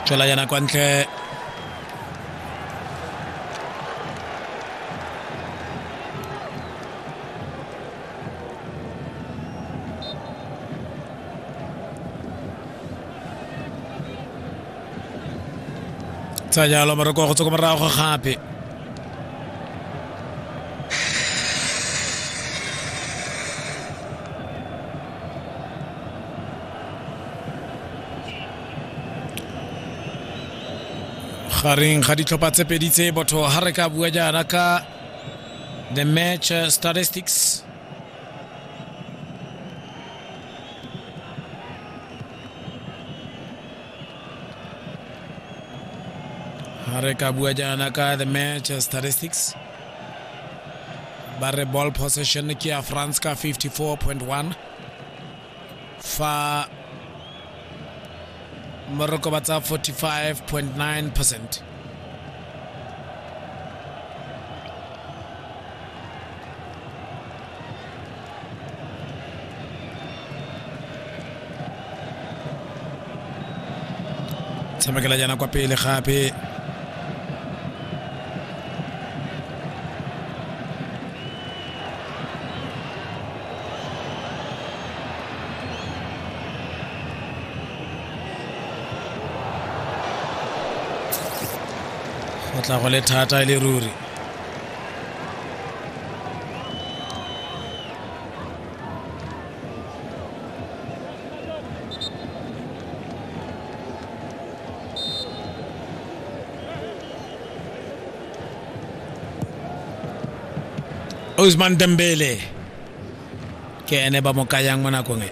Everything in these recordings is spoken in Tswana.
tswela yana kwa ntle tsa jalo moreko go tswa ko morago gape gareng ga ditlhopha tse pedi tse botho ga re ka bua jaana ka the match uh, statistics re ka bua jaana ka the match statistics ba re ball possession ke ya france ka 54.1 fa moroko ba tsa 45.9 percent tshamekela jaana kwa pele gape go tla go le thata e le ruri Ousmane Dembele ke ene ba mo kayang mo nakong e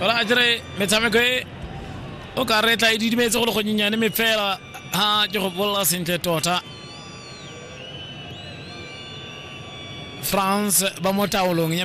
ola a kere metshameko e o ka re tla e didimetse go le gonyenyane me fela ga ke go bolela sentle tota france ba mo taolong ya